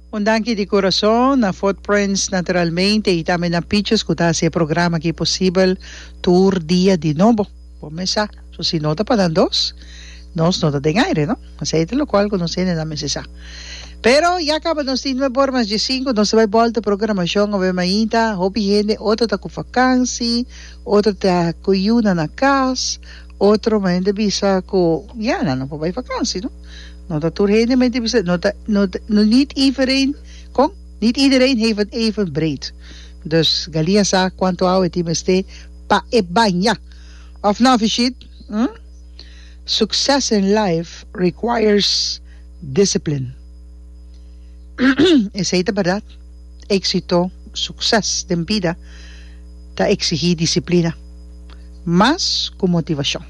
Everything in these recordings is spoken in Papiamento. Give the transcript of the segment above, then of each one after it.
Un danki di kurason na Footprints naturalmente y tambe na Pichus ku ta hasi e programa aki posibel tur dia di nobo. Bo mes sa, so si no ta pa nan dos, nos no ta den aire no. Esei ta lokual ku nos hende nan mester sa. Pero ya kaba nos tin nuep bor mas diesinku nos ta bai bolta programashon awe mainta hopi hende otro ta ku vakansi, otro ta ku yu nan na kas, Otro hende bisa ku ya nan no por bai vakansi no. No ta tur hende men ta bisa no ta no no niet ivereen kon? Niet iedereen heeft het even breed. Dus Gali a sa kuantu awa e tin mester pa e baña. Òf nò Fishit? Hm? Sukses in life requires discipline. Esei ta bèrdat. éksito, sukses den bida ta eksigí disiplina mas ku motivashon.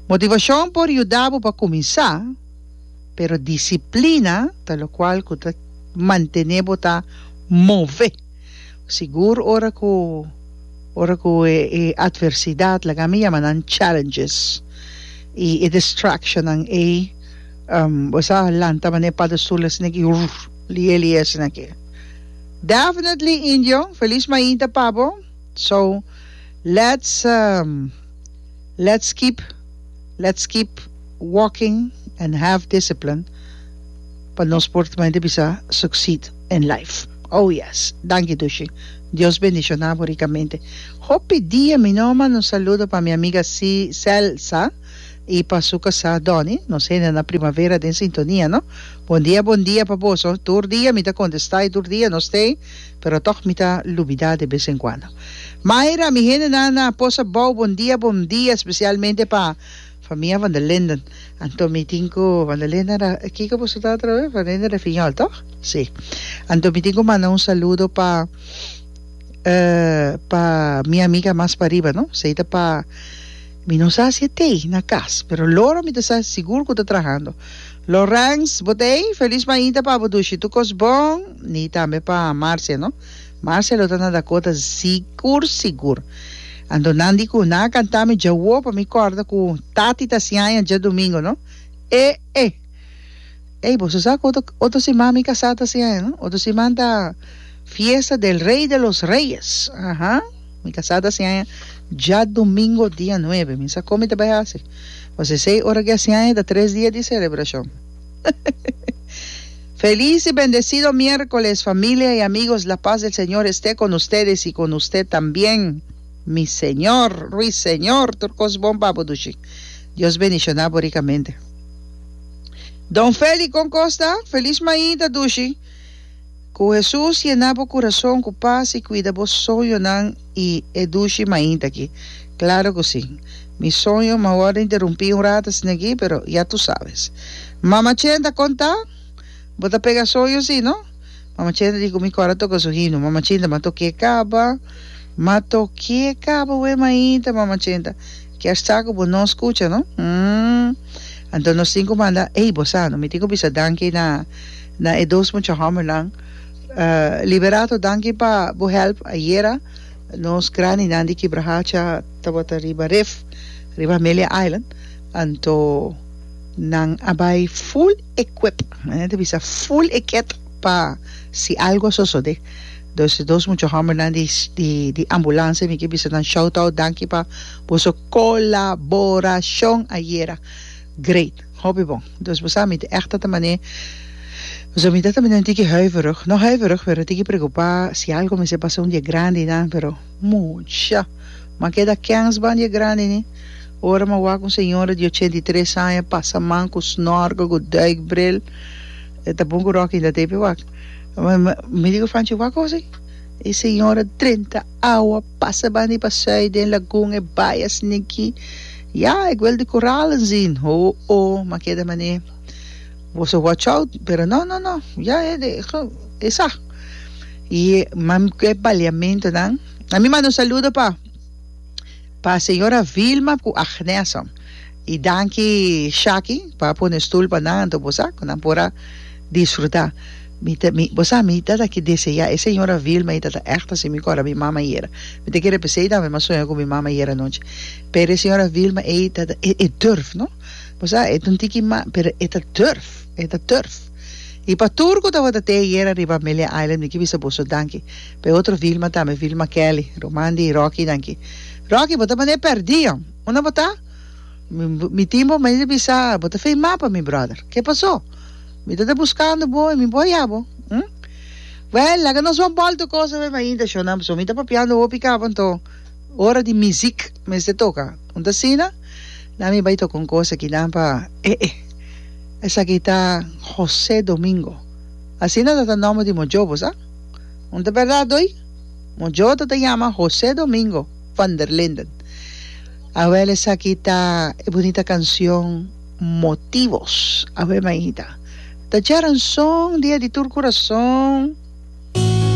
Motivashon por yuda bo pa kuminsá, pero disiplina ta lokual ku ta mantené bo ta move. Sigur ora ku ora ku e atversidat, laga mi yama nan challenges, i e distractionnan ei bo sa lanta mané e padestulnan sino ke Lieli esnan ke. Definitely indio, feliz mainta pa bo, so let's let's keep let's keep walking and have discipline pa nos por ta mainta bisa succeed in life oh yes danki dushi Dios bendiciona bo ricamente hopi dia mi no a manda un saludo pa mi amiga Celsa. y pa su casá Donny, nos hende na Primavera den sintonia no. Bon dia bon dia pa boso, tur dia mi ta contesta y tur dia no stay, pero toch mi ta lubida de bes en cuando. Myra, mi hende nan na Posabou bon dia bon dia especialmente pa famia van der Linden, anto mi tin cu van der Linden ra, kico boso ta atra vez? Van der Linden Rafiñol toch? Si. Anto mi tin cu manda un saludo pa eh pa mi amiga mas pariba no, esey ta pa. Mi no sa si e t'ei na cas, pero loro mi ta sa sigur cu ta trahando. Laurens, Bo t'ei? Feliz mainta pa bo Dushi, tur cos bon? Ni tambe pa Marcia, no? Marcia lo ta na Dakota sigur sigur. Anto nan di cu nan a canta mi djawo pa mi corda cu tati ta siaña djadomingo, no? E! E! Ey boso sa cu otro otro siman mi casá ta hasiendo no? Otro siman ta fiesta del Rey de los Reyes, aha, mi casá ta hasiendo dja domingo dia nuebe, mi sa con mi ta bay haci, pues esey ora ki hasiendo ta tres dia di celebracion. Feliz y bendecido miercoles familia y amigos la paz del Señor este con ustedes y con usted también mi Señor Ruiseñor tur cos bon pa bo dushi Dios bendiciona bo ricamente. Don Feli kon kos ta? Felis maí ta dushi ku Hesus yena bo kurason ku pas i kuida bo soñonan i e dushi maí ta ki. Klaro ku si. Mi soño ma worda interumpí un rata asin'akí pero ya tu sabes. Mama Chenta kon ta? Bo ta pega soño si no? Mama Chenta di ku mi kòr a toka su hinu. Mama Chinta, ma tok'é kaba? Ma tok'é kaba we maí ta Mama Chenta. Kier sa ku bo no skucha no? Hm. Anto nos tin ku manda ei bo sa no mi tin ku bisa danki na na e dos mucha hòmbernan. Liberato danki pa bo hèlp ayera. Nos grandinan di Kibrahacha tabata riba ref riba Amelia Island anto nan a bai full equip nan a bisa full equet pa si algu a sosode. Dos e dos mucha hombernan di di ambulansia mi ke bisa nan shout out danki pa boso kolaborashon ayera great hopi bon dos bo sa mi ta ègt tabata manera boso mi tabata manera un tiki huiverig no huiverig pero un tiki preokupá si algo mester pasa un di e grandi nan pero mucha m'a keda kèns ban di e grandi ni ora m'a wak un señora di ochenta i tres aña pasaman ku snòrke ku duikbril e ta bon ku ròk intatei pe wak. Mi dico Franchi wak gosi e señora drenta awa pasa bandi pa sui den lagun e bai a sindi aki ya e guel di coral anzin ho o ma keda mane boso watch out pero no no no ya e sa y e baliamento nan ami manda un saludo pa Pa señora Vilma cu Agneson. Y danki Shaki pa pone stoel pa nan anto bo sa cu nan por a disfruta. Mi ta mi bo sa mi ta taki desea e señora Vilma y ta ta echt así mi cora mi mama yera. Mi ta kere pesey tambe mas soña cu mi mama yera anochi. Pero e señora Vilma ey ta ta e e durf no. Bo sa e ta un tiki ma pero e ta durf e ta durf. Y pa tur cu tabata te ayera riba Amelia Island mi ke bisa boso danki. P'e otro Vilma tambe, Vilma Kelly, ruman di Rocky nan ki. Rocky, bo ta manera perdí, hom. Unda bo ta? Mi, mi tin bo mester bisa, bo ta feimá pa mi, bròder. Ke pasó? Mi ta ta buskando bo i mi bo hañá bo, hm? Wèl, laga nos wan bòlta kos awor mainta, shon nan pasó. Mi ta papiando hopi kaba, anto ora di mizìk mester toka. Unda asina? Nan mi bai toka un kos aki nan pa e e. Esaki ta José Domingo. Asina tata nòmber di mojobo, sa? Un ta berdad oí? Mojoto ta yama José Domingo van der Linden. Awel esaki ta e bunita cancion Motivos. Aweh maita. Ta djaran son dia di tur curason.